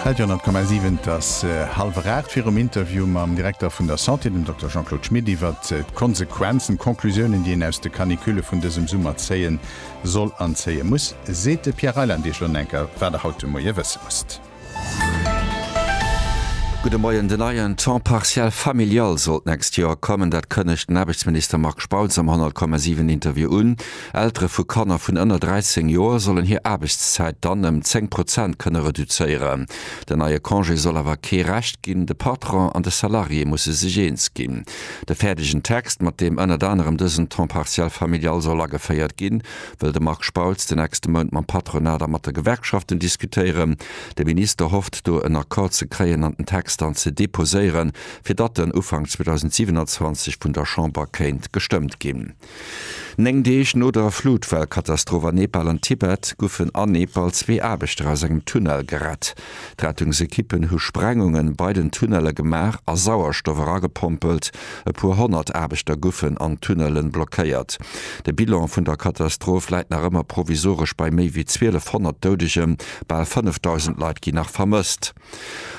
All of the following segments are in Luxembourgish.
Radio 10,7, Et ass hallwer 8. Virum Interview mam Direkter vun der Santé, dem Dokter Jean-Claude Schmit, iwwer d'Konsequenzen, d'Conclusiounen, déi een aus de Caniculle vun dësem Summer zéie soll an zéie muss, seet de Pierre Reyland Iech elo en enker, wat Der haut de Moie wësse musst. Gudde Moien. Den neien Temps partiel familial soll d'nächst Joer kommen. Dat kënnegt den Aarbechtsminister Marc Spautz am 10,7 Interview un. Eltere vu Kanner vun ënner 13 Joer sollen hir Aarbechtszäit dann ëm 10 Prozent kënne reduzéieren. Den neie Congé soll awer kee Recht ginn. De Patron an de Salarié musse sech eens ginn. De fäerdegen Text, mat deem ënnert anerem dësen Temps partiel familial soll ageféiert ginn, wëll de Marc Spautz de nächste Mount mam Patronat a mat de Gewerkschaften diskutéieren. De Minister hofft, do en Accord ze kréien an den Text dann ze deposéieren, fir datt en Ufank 2027 vun der Chamber kéint gestëmmt ginn. Néng Deeg no der Flutwellkatastroph a Nepal an Tibet goufen a Nepal zwee Aarbechter aus engem Tunnel gerett. D'Rettungsekippen hu Sprengunge bei den Tunnelle gemaach a Sauerstoff eragepompelt. E puer honnert Aarbechter goufen an Tunnelle blockéiert. De Bilan vun der Katastroph läit nach ëmmer provisoresch bei méi wéi 1.200 Doudegen. Bal 5.000 Leit ginn nach vermësst.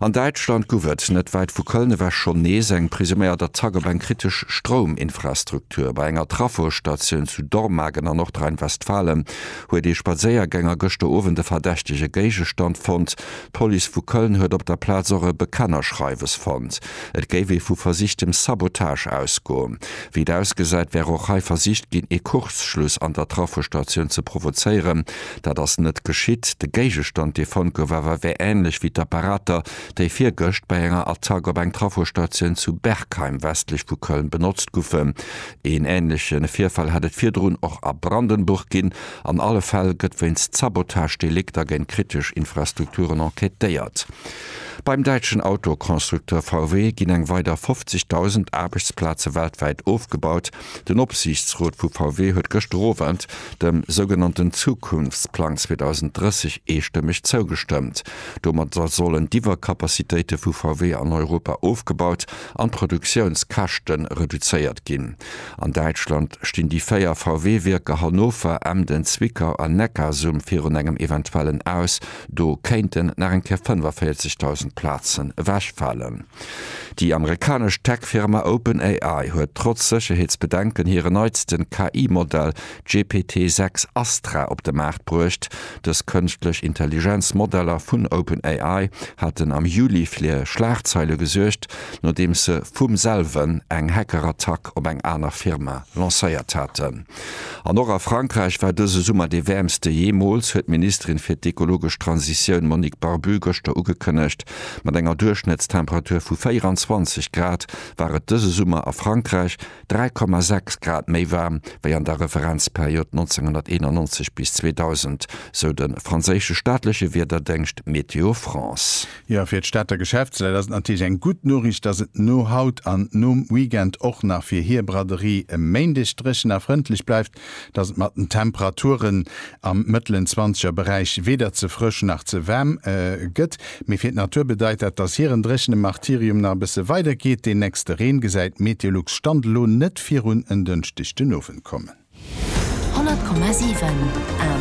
An Däitschland guff et, net wäit vu Köln ewech, schonn nees eng presuméiert Attack op eng kritesch Strouminfrastruktur. Bei enger Trafostatioun zu Dormagen an Nordrhein-Westfalen huet ee Spadséiergänger gëschter Owend e verdächtege Géigestand fonnt. D'Police vu Köln huet op der Plaz och e Bekennerschreiwes fonnt. Et géif ee vu versichtem Sabotage ausgoen. Wéi et ausgesäit, wär och hei versicht ginn, ee Kurzschluss an der Trafostatioun ze provozéieren. Dat ass net geschitt. De Géigestand, dee fonnt gouf, awer wär änlech wéi d'Apparater, déi virgëscht bei enger Attack op eng Trafostatioun zu Bergheim westlech vu Köln benotzt goufen. Een änleche Virfall hätt et virdrun och a Brandenburg ginn. An alle Fäll gëtt wéinst Sabotagedelikter géint kritesch Infrastrukturen enquêtéiert. Beim däitschen Autoconstructeur VW ginn eng weider 50.000 Aarbechtsplaze weltwäit ofgebaut. Den Opsiichtsrot vu VW huet gëschter Owend dem sougenannten Zukunftsplang 2030 eestëmmeg zougestëmmt. Domat sollen d'Iwwercapacitéite vu VW an Europa ofgebaut an d'Produktiounskäschte reduzéiert ginn. An Däitschland stinn déi véier VW-Wierker Hannover, Emden, Zwickau an Neckarsulm virun engem eventuellen Aus. Do kéinten nach eng Kéier 45.000 Plazen ewechfalen. Déi amerikanesch Tech-Firma OpenAI huet trotz Sécherheetsbedenken hire neitsten KI-Modell GPT-6 Astra op de Maart bruecht. Dës Kënschtlech Intelligenz-Modeller vun OpenAI haten am Juli fir Schlagzeile gesuergt, nodeems se vum selwen eng Hackerattack op eng aner Firma lancéiert haten. An och a Frankräich war dëse Summer dee wäermste jeemools, huet d'Ministerin fir d'ekologesch Transitioun Monique Barbu gëschter ugekënnegt. Mat enger Duerchschnëttstemperatur vu 24 Grad war et dëse Summer a Frankräich 3,6 Grad méi waarm wéi an der Referenzperiod 1991 bis 2000, sou de franséische staatleche Wiederdéngscht Météo France. Jo, fir d'Stater Geschäftsleit ass et natierlech eng gutt Noriicht, dass et no haut an nom Weekend och nach fir hir Braderie e Méindeg dréchen a frëndlech bleift, dass et mat den Temperaturen am mëttelen zwanzeger Beräich weder ze frësch nach ze waarm gëtt. Mee fir d'Natur bedeit dat, dass hiren dréchene Martyrium nach e bësse weidergeet. Deen nächste Reen gesäit Meteolux Stand elo net virun en Dënschdeg den Owend kommen. 100,7 Invité.